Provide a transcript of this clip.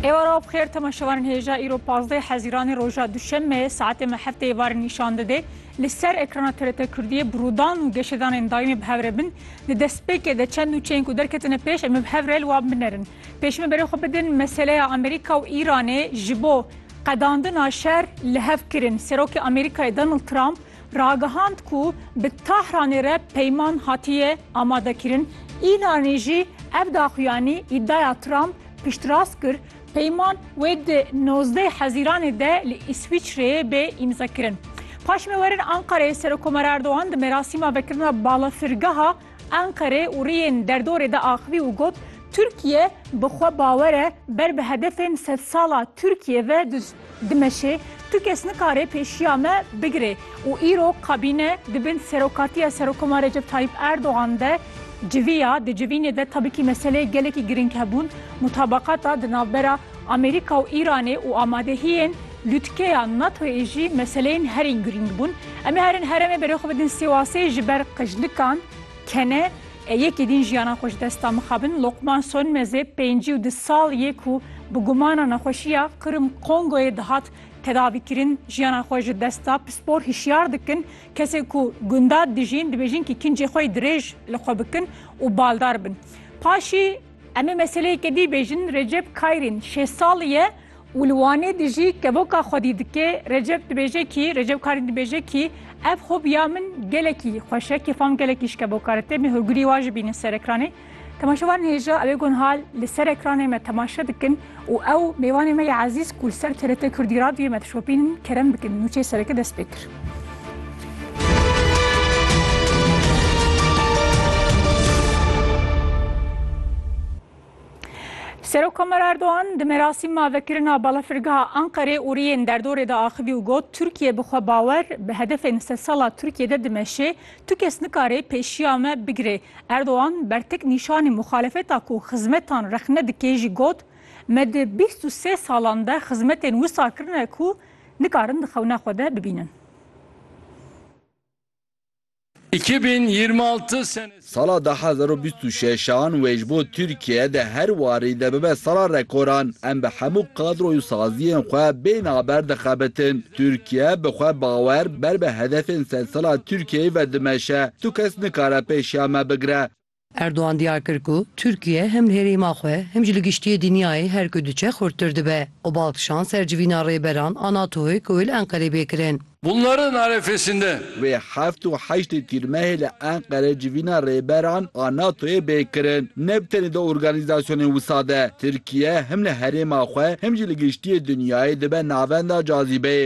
Êva raw bixêr temaşevanên hêja îro 15 hezîranê roja duşemeyê saetê me heftê êvarê nîşan dide. Li ser ekrana TRT Kurdiyê bi rûdan û geşedanên daîmê bi hev re bin. Di destpêkê de çend nûçeyên ku derketine pêş em ê bi hev re li wan binerin. Pêş min berê xwe bidin meseleya Amerîka û Îranê ji bo qedandina şer li hev kirin. Serokê Amerîkayê Donald Trump ragihand ku bi Tahranê re peyman hatiye amadekirin, Îranî jî ev daxuyanî îdaya Trump piştrast kir, peyman wê di nozdeh Hezîranê de li Îswîçreyê bê îmzekirin. Paşê me werin Enqereyê, Serokkomer Erdogan di merasîma vekirina balafirgeha Enqerê û riyên derdorê de axivî û got, Tirkiye bi xwe bawer e ber bi hedefên sedsala Tirkiyê ve Dimeşê tu kes nikare pêşiya me bigire û îro kabîne di bin serokatiya Serokoma Recep Tayyîp Erdogan de civiya. Di civînê de tabikî meseleyê gelekî girîng hebûn, mutabakata di navbera Amerîka û Îranê û amadehiyên lûtkeya NATO'yê jî meseleyên herîn girîng bûn. Em ê herin heremê berê xwe bidin Sêwasê ji ber qijlikan kene. Yekê din jiyana xwe ji desta mixabin Lokman Sonmezê pêncî û du sal yê ku bi gumana nexweşiya Qirm Kongoyê dihat tedavîkirin jiyana xwe ji desta pispor hişyar dikin kesên ku gunda dijîn dibêjin ki kincê xwe yê dirêj li xwe bikin û baldar bin paşî Em ê meseleyeke dî bêjin Recep Kayrîn şêst salî ye Û li Wanê de jî kevoka xwedî dike, Recep dibêje kî, Recep Karî dibêje kî, ev hobiya min gelekî xweş e, kêfam gelekî ji kevoka re tê, me hûrgirî wan jî bînin ser ekranê. Temaşevanên hêja ew ê gon hal li ser ekranê me temaşe dikin û ew mêvanê me yê ezîz ku li ser TRT Kurdî Radyoyê me dişopînin kerem bikin. Nûçeyê sereke dest pê kir. Serokkomer Erdogan di merasîma vekirina balafirgeha Anqerê û riyên derdorê de axivî û got, Tirkiye bi xwe bawer bi hedefên sedsala Tirkiye de dimeşê, tu kes nikare pêşiya me bigire. Erdogan bertek nîşanî muxalefeta ku xizmetan rexne dike jî got, Me di bîst û sê salan de xizmetên wisa kirine ku nikarin di xewna xwe de bibînin. Îki bin yirmi altı senesinde. Sala du hezar û bîst û şeş an wê ji bo Tirkiye di her warî de bibe sala rekoran. Em bi hemû kadroy û saziyên xwe bê naber dixebitin. Tirkiye bi xwe bawer ber bi hedefên sedsala Tirkiyeyê ve dimeşe. Tu kes nikare pêşiya me bigire. Erdogan diyar kir ku Tirkiye him li herêma xwe him jî li giştiyê dinyayê her ku diçe xurttir dibe û bal kişand ser civîna rêberan a NATO'yê ku wê li Enqerê bê kirin. Bunların arefesinde. Wê heft û heştê Tîrmehê li Enqere civîna rêberan a NATO'yê bê kirin. Ne bi tenê di organîzasyonên wisa de, Tirkiye him li herêma xwe him jî li giştiyê dinyayê dibe navenda cazîbeyê.